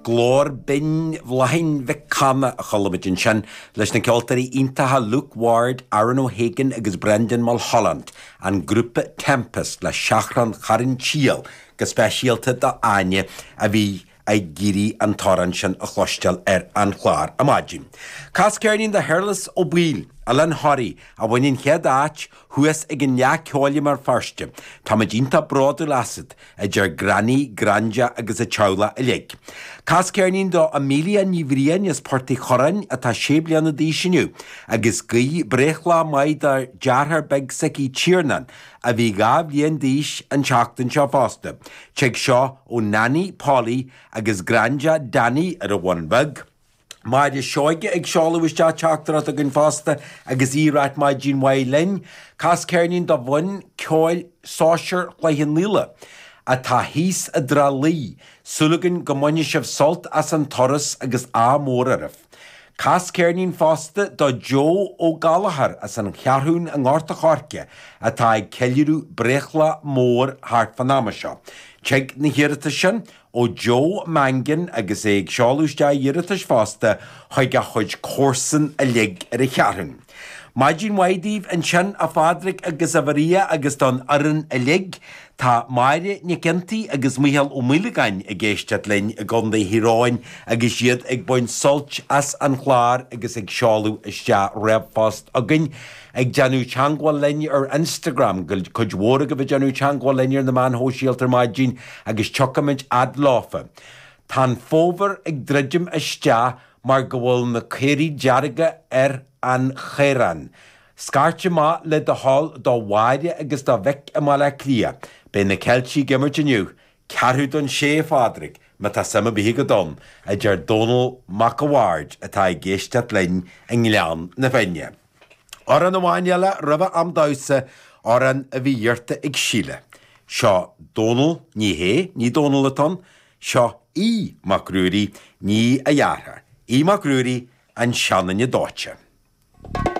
Glór binn Bhláithín Mhic Cana a chuala muid ansin, leis na ceoltóirí iontacha Luke Ward, Aaron O'Hagan agus Brendan Mulholland, an grúpa Tempest le Seachrán Charn tSiail, go speisialta do Áine a bhí ag iarraidh an t-amhrán sin a chloisteáil ar an chlár ar maidin. Cas ceirnín do Shéarlas Ó Baoill, Oileán Thoraí, a bhain an chéad áit, Thuas ag an Fhleadh Ceoil i mBéal Feirste, táimid iontach bródúil asat, a deir Granny, Granda agus an teaghlach uilig. Cas ceirnín do Amelia Ní Bhriain as Port Uí Chuireáin atá sé bliana d'aois inniu, agus guigh breithlá maith dá deartháir beag s'aici Tiarnán, a bhí dhá bhliain d'aois an tseachtain seo fosta. Tig seo ó Nanny, Polly, agus Granda, Danny, ar an Bhun Bheag. Máire Seoige ag seoladh isteach teachtaireacht chugainn fosta agus í ag ráit maidin mhaith linn. Cas ceirnín do bhanna ceoil sóisear Chloich Cheann Fhaola atá thíos i dTrá Lí. Súil againn go mbainfidh sibh sult as an turas agus ádh mór oraibh. Cas ceirnín fosta do Joe Ó Gallachóir as an Cheathrún i nGort a' Choirce atá ag ceiliúradh breithlá mór thart fán am seo. Tig na hiarratais sin ó Joe Mangan agus é ag seoladh isteach iarratais fosta chuig a chuid comharsan uilig ar an Cheathrún. Maidin mhaith daoibh ansin, a Phádraig agus a Mharia agus don fhoireann uilig. Tá Máire Nic Fhionntaigh agus Micheál Ó Maolagáin ag éisteacht linn i gContae Thír Eoghain agus iad ag baint sult as an chlár agus ag seoladh isteach ríomhphost chugainn, Ag déanamh teangmháil linn ar Instagram, cuid mhór agaibh ag déanamh teangmháil linn ar na meáin shóisialta ar maidin agus tiocfaimid fhad leofa. Tá an fómhar ag druidim isteach mar go bhfuil na caora dearga ar an chaorthann. Scairt amach le do thoil do Mháire agus do Mhick i mBaile Átha Cliath. Beidh na Ceiltigh ag imirt inniu, ceathrú don sé a Phádraig, má tá suim ar bith agat ann, a deir Dónall Mac a' Bhaird atá ag éisteacht linn i nGleann na Finne. Amhrán amháin eile roimhe am damhsa, amhrán a bhí iarrta ag Síle. Seo Dónall, ní hé, ní Dónall atá ann. Seo Aodh Mac Ruairí, ní a dheartháir. Aodh Mac Ruairí, An Seanduine Dóite.